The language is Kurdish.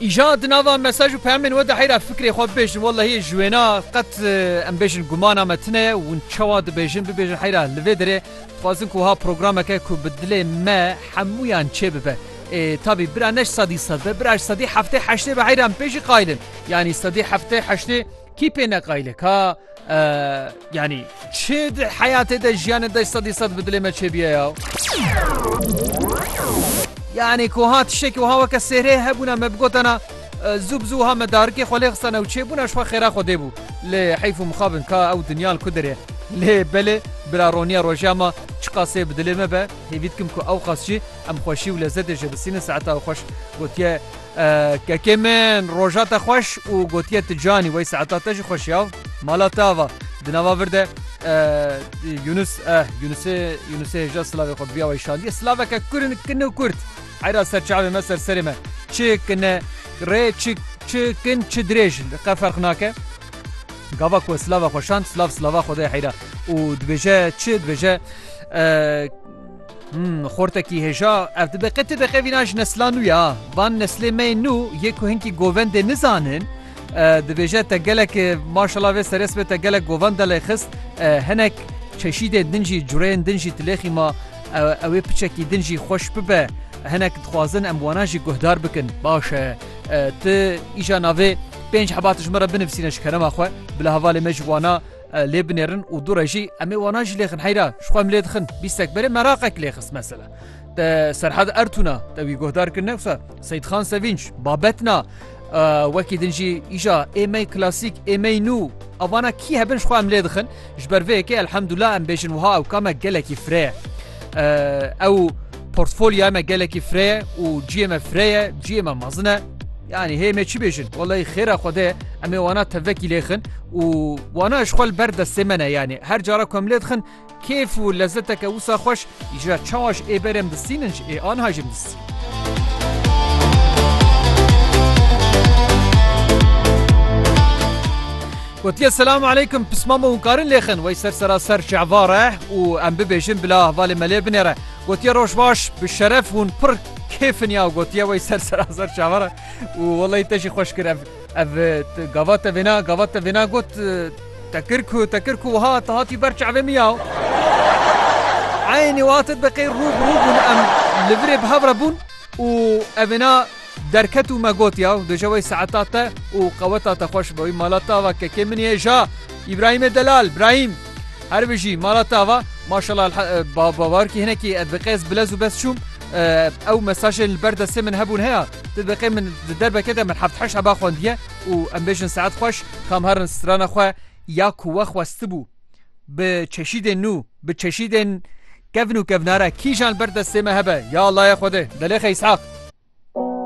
Îja di nava mesaj û peyamên we de heyra fikrê xwe bibêjin wellehiyê ji wêna qet em bêjin gumana me tune ye û çawa dibêjin bibêjin heyra li vê derê dixwazin ku ha programeke ku bi dilê me hemûyan çê bibe. Ê tabî bira ne ji sedî sed be bira ji sedî heftê heştê be heyra em pê jî qaylin yanî sedî heftê heştê kî pê ne qaylik ha Yanî çi di heyatê de jiyanê de sedî sed bi dilê me çêbiye ya. Yanî ku ha tiştekî wiha weke sêrê hebûna me bigotena zû bi zû ha me darikê xwe lê xistana û çêbûna ji xwe xêra xwe dêbû lê heyf û mixabin ka ew dinya li ku dirê lê belê bila roniya roja ma çiqasê bi dilê me be hêvî dikim ku ew qas jî em xweşî û lezetê ji bisînin saeta xweş gotiye Kekê min roja te xweş û gotiye ti canî wey saeta te jî xweş ya mala te ava di nava vir de Yunus eh Yunusê Yunusê hêja silavê xwe biya wey şandiye silaveke kur kin û kurt heyra ser çavê me ser serê me çi kine rê çi çi kin çi dirêj qe ferq nake gava ku silava xwe şand silav silava xwedê heyra û dibêje çi dibêje Him, xortekî hêja, ev dibeqe ti beqe vîna ji nesla nû ya. Van neslê me yên nû yê ku hinkî govendê nizanin, dibêje te gelek maşala vê seres be te gelek govan delê xist, hinek çeşîdên din jî cureyên din jî tilêxî ma ewê piçekî din jî xweş bibe, hinek dixwazin em wanan jî guhdar bikin. Baş e, ti îja navê pênc hebati ji min re binivîsîne ji kerema xwe, bila hevalê me ji wana Lê binêrin û dû re jî em ê wana jî lêxin heyra ji xwe em lê dixin bîstek berê meraqek lê xist mesela. Te Serhad Ertûna te wî guhdar kir newsa Seyid Xan Sevinç babetna wekî din jî îja êmey klasîk êmey nû avana kî hebin ji xwe em lê dixin ji ber vê yekê elhemdullah em bêjin wiha ew kame gelekî fireye ew portfolya me gelekî fireye û ciyê me fireye ciyê me mezine Yanî hê me çi bêjin welay xêra Xwedê em ê wana tevvekî lêxin û wana ji xwe li ber destê me ne yanî her cara ku em lêdixin kêf û lezzeteke wisa xweş îjra çawa ji ê berê em distînin ji ê anha jim distîn. Gotiye selam aleykum pismama û karin lêxin wey ser sera ser şevare û em bibêjin bila ahvalê me lê binêre. Gotiye roj baş bi şeref hûn pir Kê finya gotiye wey ser serazer çavara û welay te jî xweş kir ev ev gava te vêna gava te vêna got te kir ku te kir ku wiha te hatî ber çavê min ya Eynî wate deqê rû bi rû bûn em li virê bi hev re bûn û ev vêna derket û me got ya duje wey seeta te û qeweta te xweş be wî mala te ava kekê min yê ja Îbrahîmê delal Brahîm Her bijî mala te ava maşallah bawarkî hinekî ez bi qez bilez û bes çûm ew mesajên li ber destê min hebûn heya tu diqê min di derbeke de min heft heş heba xwendiye û em bêjin saet xweş kam herin strana xwe ya ku we xwestibû bi çeşîdên nû bi çeşîdên kevn û kevnare kîjan li ber destê me hebe ya Allahê Xwedê delê xeysaq